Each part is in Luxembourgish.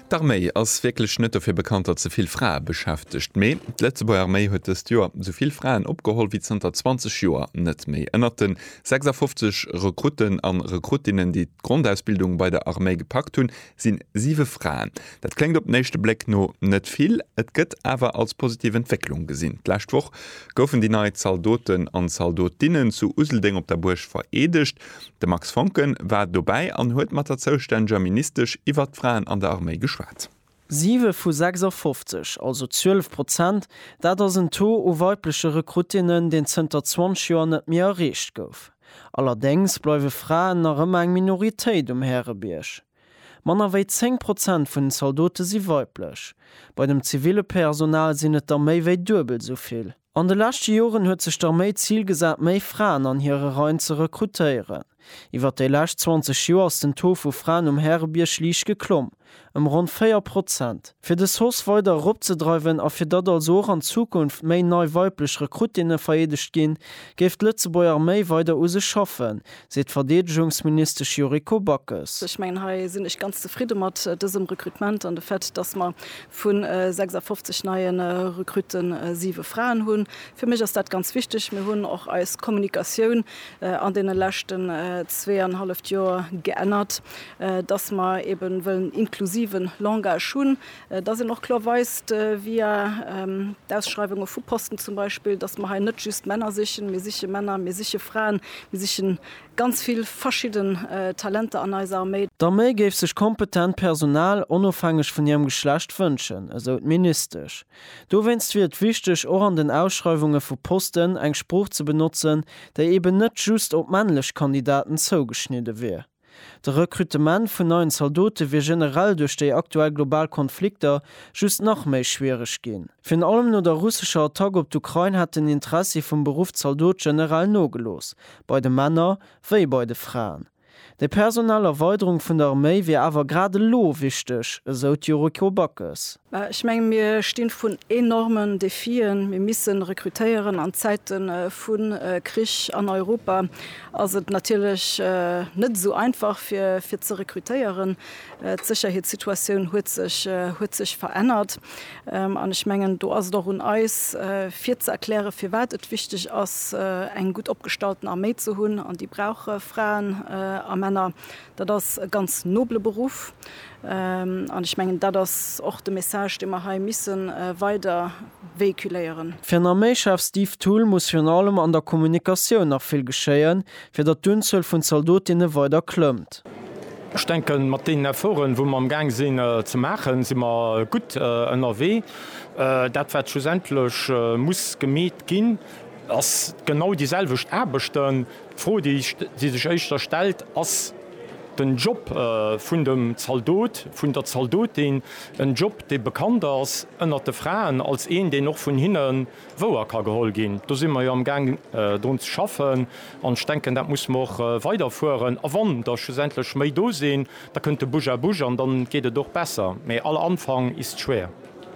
D'Arméi ass wierklech net dofir bekannt, datt se vill Frae beschäftegt. Mee d'Lëtzebuerger Arméi huet dëst Joer sou vill Fraen opgeholl wéi zanter 20 Joer net méi. Ënnert de 56 Rekrutten a Rekruttinnen, déi d'Grondausbildung bei der Arméi gepackt hunn, si siwe Fraen. Dat kléngt op den éischte Bléck no net vill, et gëtt awer als positiv Entwécklung gesinn. D'lescht Woch goufen déi nei Zaldoten an Zaldotinnen zu Useldeng op der Buerg vereedegt. De Max Voncken war dobäi an huet mat der zoustänneger Ministesch iwwert d'Fraen an der Arméi geschwat. Siwe vu 56, also 12 Prozent, dat ass en Taux u weibleche Rekruttinnen, deen zënter 20 Joer net méi erreecht gouf. Allerdéngs bleiwe Fraen nach ëmmer eng Minoritéit um Härebierg. Manner wéi 10 Prozent vun den Zaldote si weiblech. Bei dem ziville Personal sinn et der méi wéi duebel esou vill. An de leschte Joren huet sech d'Arméi d'Zil gesat, méi Fraen an hire Reien ze rekrutéieren. Iwwer déi lescht 20 Joer ass den Taux vu Fraen um Härebierg liicht geklomm, ëm ronn 4 Prozent. Fir de SOS weider eropzedreiwen a fir datt also och an Zukunft méi nei weiblech Rekruttinne vereedegt ginn, géif d'Lëtzebuerger Arméi weider u sech schaffen, seet d'Verdeedegungsministesch Yuriko Backes. Ech mengen, hei sinn ech ganz zefridde mat dësem Rekrutement an de Fait, dass mer vu 56 neie Rekrutte siwe Fraen hunn. Fir mech ass dat ganz wichteg. Mir hunn och eis Kommunikatioun an deene leschten zweeanhalleft Joer geännert, dass mer eebe wëllen inklusiven Langage hunn. dass een och kloer weist, via d'Ausschreiwunge vu Posten zum Beispill, dass mer hei net just Männer sichen, mir siche Männer, mir siche Fraen, mir siche ganz vill verschidden Talenter an eiser Arméi. D'Arméi géif sech kompetent Personal onofhängeg vun hirem Geschlecht wënschen, esou d'Ministesch. Dowéinst wier et wichteg, och an den Ausschreiwunge vu Posten eng Sprooch ze benotzen, déi eeben net just op männlech Kandidaten zougeschnidde wier. De Rekrutement vun neien Zaldote wier generell duerch déi aktuell global Konflikter just nach méi schwiereg ginn. Virun allem no der russescher Attack op d'Ukrain hätt den Interessi vum Beruff Zaldot generell nogelooss, bei de Männer wéi bei de Fraen. Déi personell Erweiderung vun der Arméi wier awer grad elo wichteg, esou d'Yuriko Backes. Mä ech mengen, mir sti vrun enormen Defien. Mir missen rekrutéieren an Zäite vu Krich an Europa. ass et natierlech net esou einfach fir ze rekrutéieren. D'Sécherheetssituatioun huet sech verännert an ech mengen, do ass et och un eis fir ze erklären, firwat et wichteg ass, eng gutt opgestallten Arméi ze hunn, an déi brauch Fraen a Männer. Dat ass e ganz nobele Beruff. An ech mengen, dat ass och de Message, dee mer hei misse weider véhiculéieren. Fir nach méi schaarf Steve Thull muss virun allem an der Kommunikatioun nach vill geschéien, fir datt d'Unzuel vun Zaldotinne weider klëmmt. Ech denken, mat deenen Efforten, wou mer amgaang sinn ze maachen, si mer gutt ënnerwee. Dat, wat schlussendlech muss gemeet ginn, ass genau déiselwecht Aarbechten. D'Fro, déi sech éischter stellt, Ass den Job vun dem Zaldot, vun der Zaldotin en Job, dee bekannt ass ënnert de Fraen als een, deen och vun hinne wouer ka geholl ginn? Do si mer jo amgaang drun ze schaffen an ech denken, dat musse mer och weiderfueren. A wann der schlussendlech méi do sinn, da kënnt de Bouche à bouche an da geet et och besser. Mee aller Anfang ist schwer.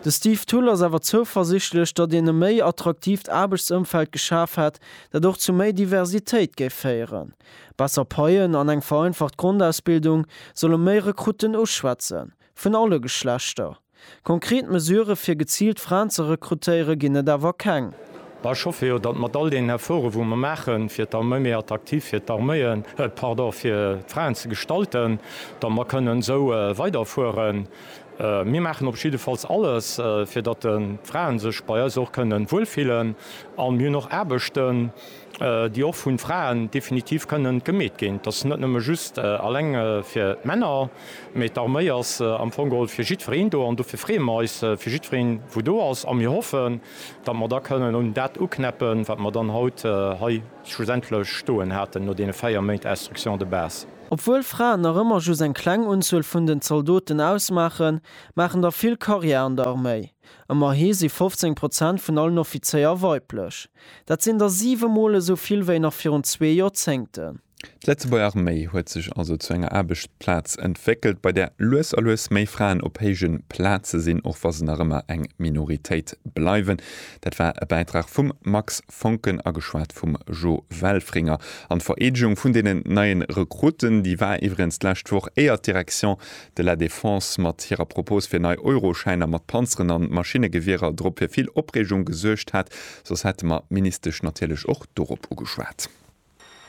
De Steve Thull ass awer zouversichtlech, datt een e méi attraktiivt Aarbechtsëmfeld geschaf hätt, dat och zu méi Diversitéit géif féieren. Besser Paien an eng vereinfacht Grondausbildung solle méi Rekrutten uschwätzen, vun alle Geschlechter. Konkret Mesurë fir geziilt Fraen ze rekrutéiere ginn et awer keng. Ech hoffe jo, datt mat all deenen Efforte wou mer maache fir d'Arméi méi attraktiv fir d'Arméien, pardon, fir d'Fraen ze gestalten, datt mer kënnen esou weiderfueren. Mir maachen op jiddefalls alles, fir datt d'Frae sech bei eis och kënnen wuel fillen. A mir hunn och Aarbechten, déi och vun Fraen definitiv kënnen gemeet ginn. Dat ass net nëmme just alleng fir d'Männer, mee d'Arméi ass am Fong geholl fir jiddwereen do. An dofir freeë mer eis fir jiddwereen, wou do ass. A mir hoffen, datt mer da kënnen un dat uknäppen, wat mer dann haut hei schlussendlech stoen haten no deene véier Méint Instruction de base. Obwuel Fraen nach ëmmer just eng kleng Unzuel vun den Zaldoten ausmaachen, maachen der vill Karriär an der Arméi. Ëmmerhi si 15 Prozent vun allen Offizéier weiblech. Dat sinn der siwe Mol esou vill wéi nach virun zwee Joerzéngten. D'Lëtzebuerger Arméi huet sech also zu enger Aarbechtsplaz entwéckelt, bei där lues a lues méi Fraen op héije Plaze sinn, och wa se nach ëmmer eng Minoritéit bleiwen. Dat war e Bäitrag vum Max Foncken ageschwat vum Jo Welfringer. An d'Vereedegung vun deenen neien Rekruten, déi war iwwregens d'lescht Woch, éier d'Direction de la Défense mat hirer Propose fir nei Euroschäiner mat Panzeren an Maschinnegewierer drop fir vill Opreegung gesuergt hat, soss hätte mer d'Ministesch natierlech och dorop ugeschwat.